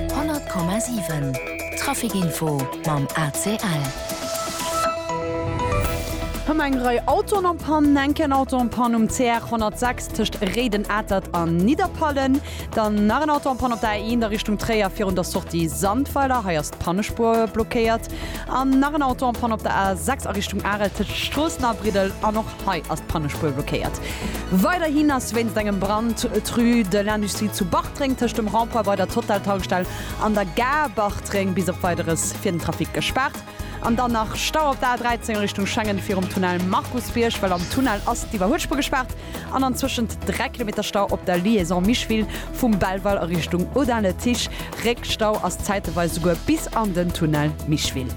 100,7 Trafic Info mam ACL. Hëmmer eng Rei Autoen am Pann, enken Auto am Pann um CR 106 tëscht Réiden, Atert a Nidderpallen. Dann nach en Auto am Pann op der A1 a Richtung Tréier virun der Sortie Sandweiler, hei ass d'Pannespuer blockéiert. An nach en Auto am Pann op der A6 a Richtung Arel tëscht Stroossen a Briddel an och. Hei ass d'Pannespuer blockéiert. Weiderhin ass wéinst engem Brand d'Rue de l'Industrie zu Bartreng tëscht dem Rond-point bei der Total-Tankstell an der Gare Bartreng bis op Weideres fir den Trafic gespaart. An dann nach Stau op der A13 Richtung Schengen virum Tunnel Markusbierg, well am Tunnel ass d'Iwwerhuelspuer gespaart an antwëschent 3 Kilometer Stau op der Liaison Micheville vum Belval a Richtung Audun-le-Tiche. Réckstau ass zäiteweis souguer bis an den Tunnel Micheville.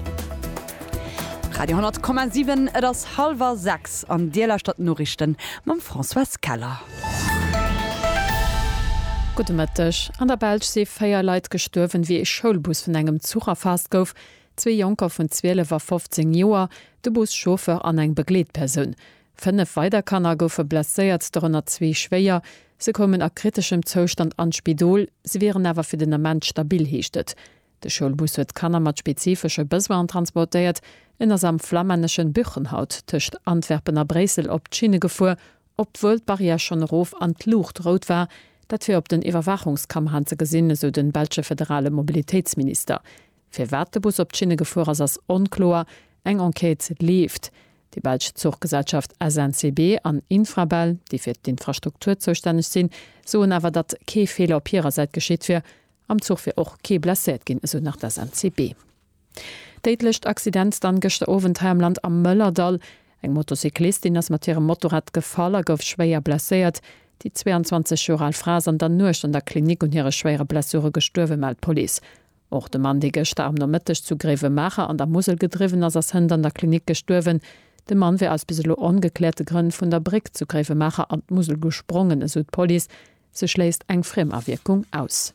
Radio 10,7 Et ass hallwer 6 an Dir lauschtert d'Noriichten mam Françoise Keller. Gudde Mëtteg. An der Belsch si 4 Leit gestuerwen, wéi ee Schoulbus vun engem Zuch erfaasst gouf. Zwee Jonker vun 12 a 15 Joer, de Bus-Chauffeur an eng Begleetpersoun. Fënnef weider Kanner goufe blesséiert, dorënner zwee schwéier. Se koumen a kriteschem Zoustand an d'Spidol. Se wieren awer fir den Ament stabil, heescht et. De Schoulbus huet Kanner mat spezifesche Besoinen transportéiert. En ass am flammänneschen Buchenhout tëscht Antwerpen a Bréissel op d'Schinne gefuer, obwuel d'Barrière schonn erof an d'Luucht rout war. Dat wier op den Iwwerwaachungskameraen ze gesinn, esou de belsche federale Mobilitéitsminister. Firwat de Bus op d'Schinne gefuer ass, ass onkloer. Eng Enquête leeft. Déi belsch Zuchgesellschaft SNCB an Infrabel, déi fir d'Infrastruktur zoustänneg sinn, soen awer, datt kee Feeler op hirer Säit geschitt wier. Am Zuch wier och kee blesséiert ginn, esou nach d'SNCB. Déidlecht Accident dann gëschter Owend hei am Land am Mëllerdall. Eng Motocyclistin ass mat hirem Motorrad gefall a gouf schwéier blesséiert. Déi 22 Joer al Fra ass an der Nuecht an der Klinik un hire schwéiere Blessure gestuerwen, mellt d'Police. Och de Mann, dee gëschter am Nomëtteg zu Gréiwemaacher an der Musel gedriwwen ass, ass hënt an der Klinik gestuerwen. De Mann wier aus bis elo ongekläerte Grënn vun der Bréck zu Gréiwemaacher an d'Musel gesprongen, esou d'Police. Se schléisst eng Friemawierkung aus.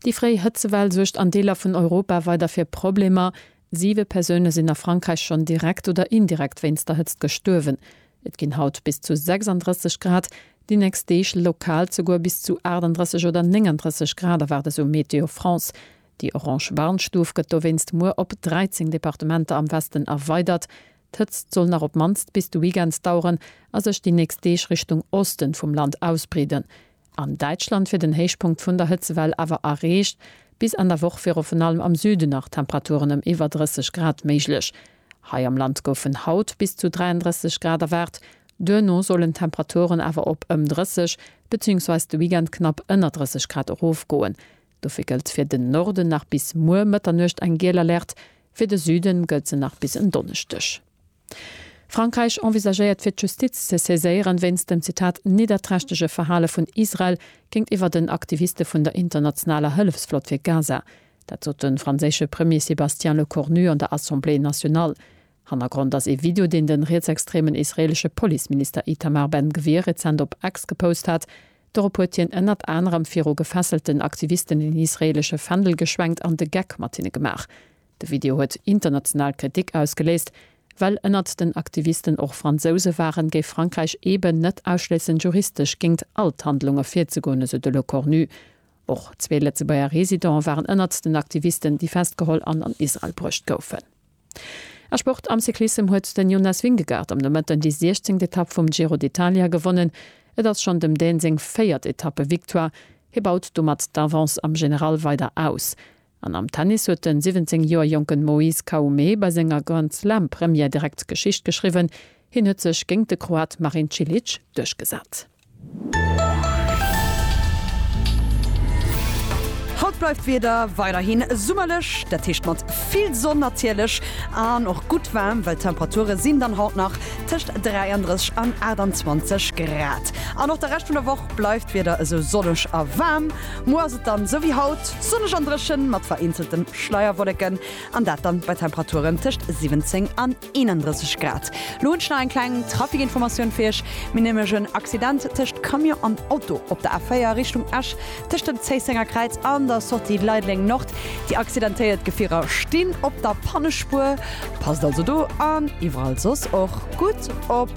Déi fréi Hëtzewell suergt an Deeler vun Europa weider fir Problemer. Siwe Persoune sinn a Frankräich schonn direkt oder indirekt wéinst der Hëtzt gestuerwen. Et ginn haut bis zu 36 Grad, déi nächst Deeg lokal souguer bis zu 38 oder 39 Grad erwaart esou Météo France. Déi orange Warnstuf gëtt dowéinst muer op 13 Departementer am Westen erweidert. D'Hëtzt soll nach op mannst bis de Weekends daueren a sech déi nächst Deeg Richtung Osten vum Land ausbreeden. An Däitschland wier den Héichpunkt vun der Hëtzewell awer erreecht. Bis Enn der Woch wier ofen allem am Süden nach Temperaturen ëm iwwer 30 Grad méiglech. Hei am Land goufen haut bis zu 33 Grad erwaart. Duerno sollen d'Temperaturen awer op ëm 30 beziehungsweise de Weekend knapp ënner 30 Grad erofgoen. Dofir gëllt fir den Norden nach bis muer Mëtternuecht eng giel Alerte, fir de Süde gëllt se nach bis en Donneschdeg. Frankräich envisagéiert fir d'Justiz ze saiséieren, wéinst dem, Zitat, nidderträchtege Verhale vun Israel géintiwwer den Aktiviste vun der internationaler Hëllefsflott fir Gaza. Dat sot de franséische Premier Sébastien Lecornu an der Assemblée nationale. Hannergrond ass ee Video, deen de rietsextremen israeelesche Policeminister Itamar Ben Gvir rezent op X gepost hat. Dorop huet hien ënnert anerem viru gefesselten Aktivisten een israeelesche Fändel geschwenkt an de Geck mat hinne gemaach. De Video huet international Kritik ausgeléist. Well ënnert den Aktivisten och Fransouse waren, géif Frankräich eeben net ausschléissen, juristesch géingt all d'Handlunge virzegoen, esou de Lecornu. Och zwee Lëtzebuerger Residente waren ënnert den Aktivisten, déi festgeholl an an Israel bruecht goufen. A Sport, Am Cyclissem huet den Jonas Vingegaard am Nomëtten déi siechzéngt Etapp vum Giro d'Italia gewonnen. Et ass schonn dem Dän seng véiert Etappe-Victoire. Hie baut domat d'Avance am General weider aus. An am Tennis huet den 17 Joer jonken Moise Khaume bei senger Grand-Slam-Première direkt Geschicht geschriwwen. Hien huet sech géint de Kroat Marin Cilic duerchgesat. Haut bleift d'Wieder weiderhi summerlech, dat heescht mat vill Sonn natierlech an och gutt waarm, well d'Temperature sinn dann haut nach tëscht 33 an 28 Grad. An och de Rescht vun der Woch bleift d'Wieder esou sonneg a waarm. Muer ass et dann esou wéi haut, sonneg an dréchen mat vereenzelten Schleierwolleken an dat dann bei Temperaturen tëscht 17 an 31 Grad. Lo hunn ech nach eng kleng Trafikinformatioun fir Iech. Mir hunn nämlech en Accident tëscht Camion an Auto op der A4 Richtung Esch, tëscht dem Zéissenger Kräiz an der Sortie Leideleng Nord. Déi accidentéiert Gefierer stinn op der Pannespuer. Passt also do an iwwerall soss och gutt op.